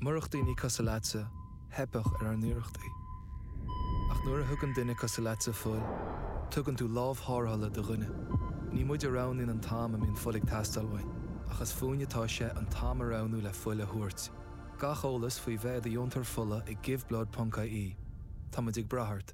Murach daoine cosúil leatsa, theipfeadh ar ár n-iarrachtaí. Ach nuair a thugann duine cosúil leatsa fuil, tugann tú lámh tharrthála do dhuine. Ní muid a roghnaíonn an t-am a mbíonn fuil ag teastáil uainn, ach is fúinne atá sé an t-am a roghnú le fuil a thabhairt. Gach eolas faoi bheith i do dheontóir fola ag Giveblood ponc ie Tá muid ag brath ort.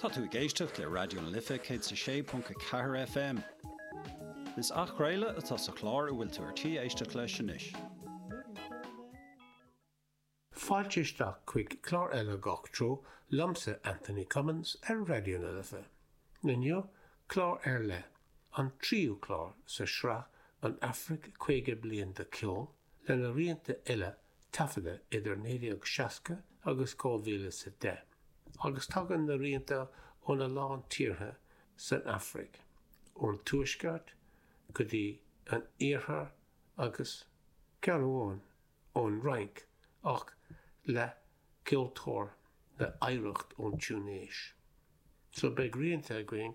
Tá tú ag éisteacht le Raidió na Life 106.4 FM. Is athchraoladh atá sa chlár a bhfuil tú ar tí éisteacht leis anois. Fáilte isteach chuig clár eile Gach Treo liomsa Anthony Cummins ar Raidió na Life. Inniu, clár ar leith, an tríú clár sa tsraith An Afraic 50 Bliain de Cheol, lena rianta uile taifeadta idir 1960 agus 2010, agus tagann na rianta óna lán tíortha san Afraic, ón Tuaisceart go dtí an Iarthar agus, ceann amháin, ón Fhrainc, ach le ceoltóir le hoidhreacht ón Túinéis. So beidh rianta againn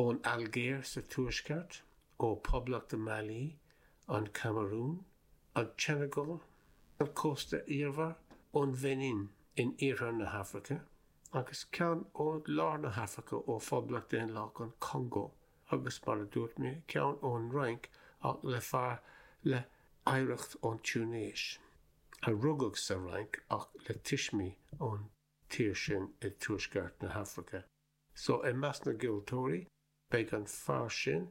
ón Ailgéir sa Tuaisceart, ó Poblacht Mali, an Camarún, an tSeineagáil ar chósta iarthar ón Bheinin in iarthar na hAfraice, agus ceann ó lár na hAfraice ó Phoblacht Dhaonlathach an Chongó, agus mar a dúirt mé, ceann ón Fhrainc ach le fear le hoidhreacht ón Túinéis, a rugadh sa Fhrainc ach le tuismí ón tír sin i dtuaisceart na hAfraice. So, i measc na gceoltóirí, beidh an fear sin,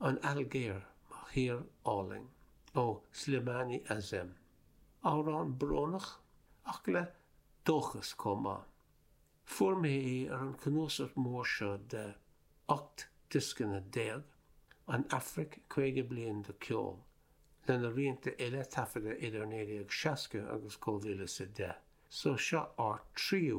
An Ailgéir, mo thír álainn. Ó Slimane Azem. Amhrán brónach, ach le dóchas chomh maith. Fuair mé é ar an chnuasach mór seo de 18 dioscanna, An Afraic, 50 bliain de cheol, lena rianta uile taifeadta idir 1960 agus 2010, so seo ár dtríú